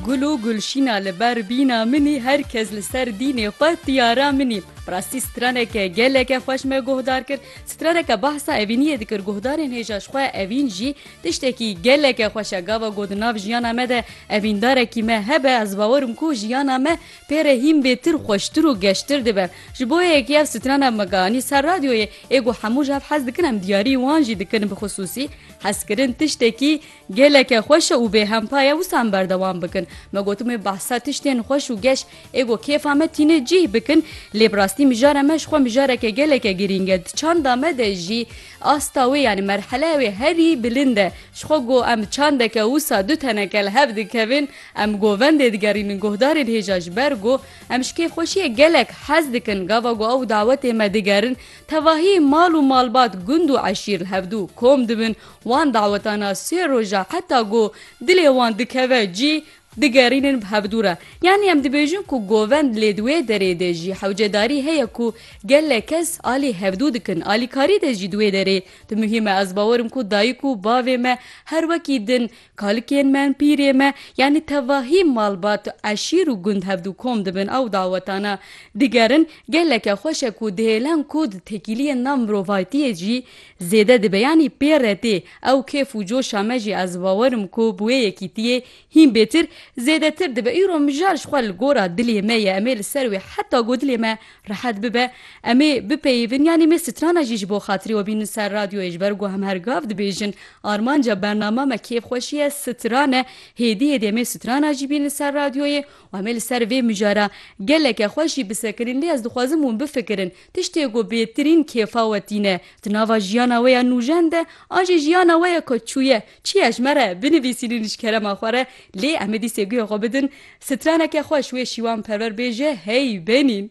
Gul û gulşîna li ber bîna min î her kes li ser dînê xwe tiyara min î. Bi rastî straneke geleke xweş me guhdar kir. Straneke behsa evîniyê dikir guhdarên hêja ji xwe evîn jî tiştekî geleke xweş e. Gava ku di nav jiyana me de evîndarekî me hebe ez bawer im ku jiyana me pê re hîn bêtir xweştir û geştir dibe. Ji bo yekî ev strana mega anî ser radyoyê. Ê ku hemû ji hev hez dikin em diyarî wan jî dikin bixusûsî hezkirin tiştekî Geleke xweş e û bêhempa ye wisa em berdewam bikin. Me gotin wê behsa tiştên xweş û geş ê ku kêfa me tîne cîh bikin lê bi rastî mijara me ji xwe mijareke geleke girîng e. Di çanda me de jî asta wê yanî merheleya wê herî bilind e. Ji xwe ku em çandeke wisa du teneke li hev dikevin em govendê digerînin guhdarên hêja ji ber ku em ji kêfxweşiyê gelek hez dikin gava ku ew dawetê me digerin tevahî mal û malbat gund û eşîr li hevdu kom dibin Wan dawetana sê roja heta ku dilê wan dikeve cî digerînin bi hevdû re. Yanî em dibêjin ku govend lê di wê derê de jî hewcedarî heye ku gelek kes alî hevdû dikin. Alîkarî de jî di wê derê di muhîm e. Ez bawer im ku dayik û bavê me her wekî din Kalikên me in pîrê me, yanî tevahî malbat, eşîr û gund hev du kom dibin ew dawetane digerin. Geleke xweş e ku dihêlin ku di tekîliyên nav mirovaytiyê jî zêde dibe yanî pê re tê. Ew kêf û coşa me jî ez bawer im ku bi wê yekîtiyê hîn bêtir, zêdetir dibe. Îro mijar ji xwe li gora dilê me ye, em ê li ser wê heta ku dilê me Rehet bibe, em ê bipeyivin yanî me strana jî ji bo xatirê we bînin ser radyoyê ji ber ku em her gav dibêjin armanca bernama me kêfxweşî ye stran e, hêdî hêdî em ê strana jî bînin ser radyoyê û em ê li ser vê mijara geleke xweş jî bisekinîn lê ez dixwazim hûn bifikirin tiştê ku bêtirîn kêfa we tîne di nava jiyana we ya nûjen de a jî jiyana we ya ka çûye Çiya ji me re binivîsîn û ji kerema xwe re lê em ê dîsê guya xwe bidin, straneke xweş wê şîwan perwer bêje hey benîn.